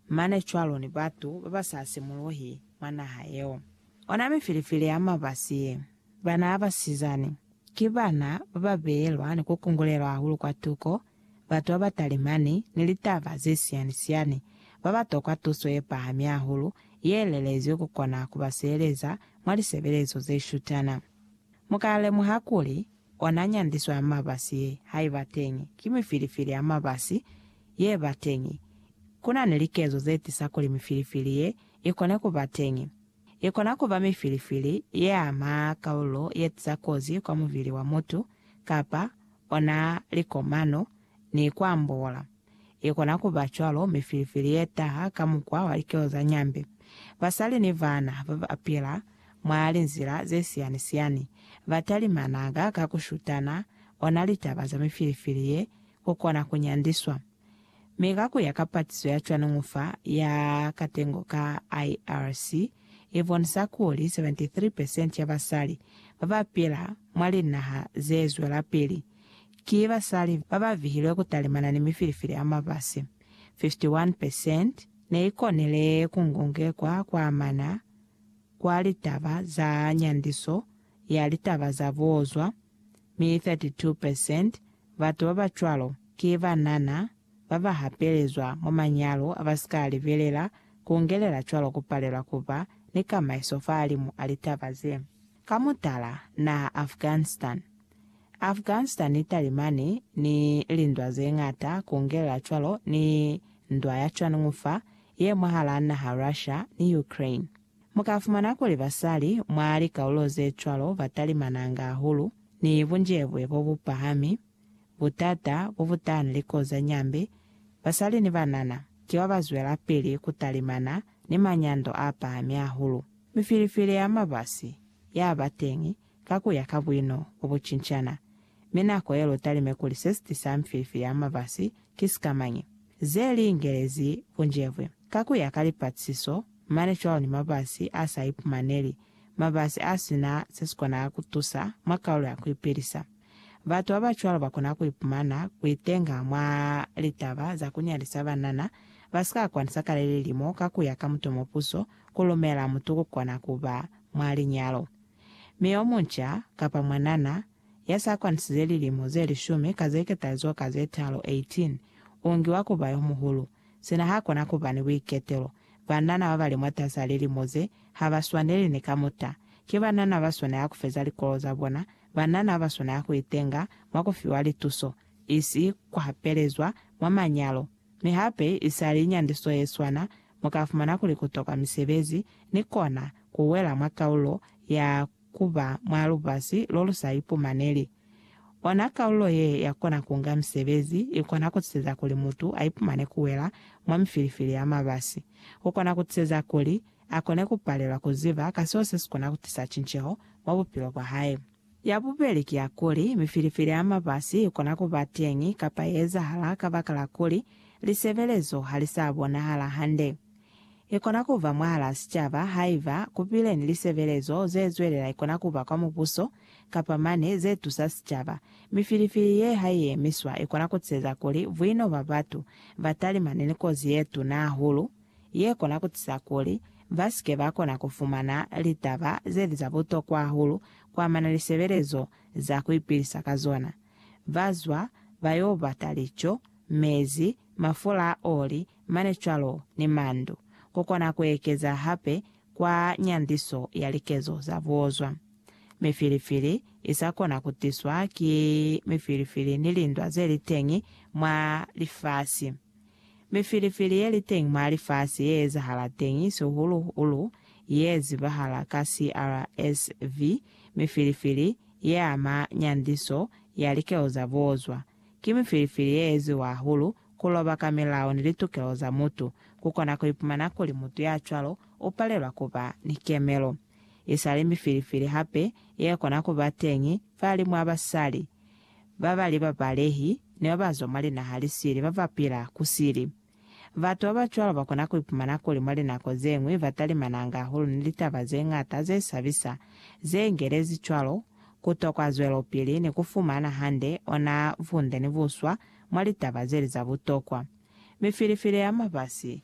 Mane cwalo ni batu babasa simuluhi mwa naha yeo. Ona mifilifili ya mabasi ye. Bana ba basizani, ki bana baba beelwa ni ku kungulelwa hahulu kwa tuko, batu baba talimani ni litaba ze siyani-siyani, baba tokwa tuso ye pahami hahulu ye lelezwi ku kona kuba sieleza mwa lisebelezo ze shutana. Mu ka lemuha kuli, Ona nyandiso ya mabasi ye ha iba teñi, ki mifilifili ya mabasi ye ba teñi. Ku na ni likezo ze tisa kuli mifilifili ye i kone ku ba teñi. I kona ku ba mifilifili ye ama kaululo ye tisa kozi kwa mubili wa mutu, kapa ona likomano, ni ku ambola. I kona ku ba cwalo mifilifili ye taha ka mukwa wa likelo za nyambe. Basali ni bana ba ba pila mwa linzila ze siyani-siyani ba talimanaga ka ku shutana ona litaba za mifilifili ye ku kona ku nyandiswa. Mi ka ku ya ka patiso ya cwaningu fa ya katengo ka IRC, i bonisa kuli 73 percent ya basali ba ba pila mwa linaha ze zwelapili Ki basali ba ba vihilwe ku talimana ni mifilifili ya mabasi. 51 percent ne i konile ku ngongekwa kwa amana kwa litaba za nyandiso ya litaba za buozwa, mi 32 percent batu ba ba cwalo ki banana ba ba hapelezwa mwa manyalo a ba si ka a libelela, ku ngelela cwalo ku palelwa ku ba ni kamaiso fahalimu a litaba ze. Ka mutala, naha Afghanistan. Afghanistan i talimani ni lindwa ze ñata, ku ngelela cwalo ni ndwa ya cwaningu fa ye mwahalaa naha Russia ni Ukraine. Mu ka fumana kuli basali mwa likaululo ze cwalo ba talimananga hahulu ni bunjebwe bo bu pahami, Butata bo butana likozi za nyambe, basali ni banana ki ba ba zwelapili ku talimana ni manyando a pahami hahulu. Mifilifili ya mabasi ya ba teñi ka ku ya ka buino bo bu cincana. Mi nako ye lu talime kuli se si tisa mifilifili ya mabasi ki sikamañi, ze li ingelezi bunjebwe. Ka ku ya ka lipatisiso, mane cwalo ni mabasi a sa ipumaneli, mabasi a si na se si kona ku tusa mwa kaulo ya ku ipilisa. Batu babacwalo bakona kuipumana kuitenga mwa litaba za kunyalisa banana basika kwanisa kale lilimo ka kuya ka mutumo puso kulumela mutu kukona kuba mwa linyalo mi omunca kapa mwanana yasa kwanisize lilimo ze lishumi ka zeketalizo ka zetaalu, 18, ungiwa kuba yomuhulu. Sina hakona kuba ni buiketelo. Banana babali mwatasaa lilimo ze habaswaneli ni kamuta. Ki banana baswanela kufeza likolo zabona banana ba swanela ku itenga mwa ku fiwa lituso, isi ku hapelezwa mwa manyalo. Mi hape, isali nyandiso ye swana, mu ka fumana kuli ku tokwa misebezi ni kona ku wela mwa kaulo ya ku ba mwa lubasi lo lu sa ipumaneli. Ona kaulo ye ya kona ku nga misebezi i kona ku tiseza kuli mutu a ipumane ku wela mwa mifilifili ya mabasi. Ku kona ku tiseza kuli a kone ku palelwa ku ziba ka seo se si kona ku tisa cinceho mwa bupilo bwa hae. Ya bubeli ki ya kuli, mifilifili ya mabasi i kona ku ba teñi kapa ya ezahala kabakala kuli lisebelezo ha li sa bonahala hande. I kona ku ba mwahalaa sicaba haiba ku bile ni lisebelezo ze zwelela, i kona ku ba kwa mubuso, kapa mane ze tusa sicaba. Mifilifili ye ha i emiswa, i kona ku tiseza kuli buino bwa batu ba talimane ni kozi ye tuna hahulu. ye kona ku tisa kuli ba si ke ba kona ku fumana litaba ze li za butokwa hahulu ku amana ni sebelezo za ku ipilisa ka zona. Ba zwa, ba yo bata lico, mezi, mafula a oli, mane cwalo ni mandu. Ku kona ku ekeza hape kwa nyandiso ya likezo za buozwa. Mifilifili i sa kona ku tiswa ki mifilifili ni lindwa ze li teñi mwa lifasi. Mifilifili ye li teñi mwa lifasi ye ezahala teñi sihulu-hulu ye zibahala ka CRSV, mifilifili ye ama nyandiso ya likelo za bozwa. Ki mifilifili ye eziwa hahulu ku loba ka milao ni litukelo za mutu. Ku kona ku ipumana kuli mutu ya cwalo u palelwa ku ba ni kemelo. I sa li mifilifili hape ye kona ku ba teñi fa limu a basali. Ba bali babalehi ni ba ba zwa mwa linaha li sili ba ba pila ku sili. Batu ba ba cwalo ba kona ku ipumana kuli mwa linako ze ñwi ba talimananga hahulu ni litaba ze ñata ze sabisa ze ingelezi cwalo ku tokwa zwelopili ni ku fumana hande ona bunde ni buswa mwa litaba ze li za butokwa. Mifilifili ya mafasi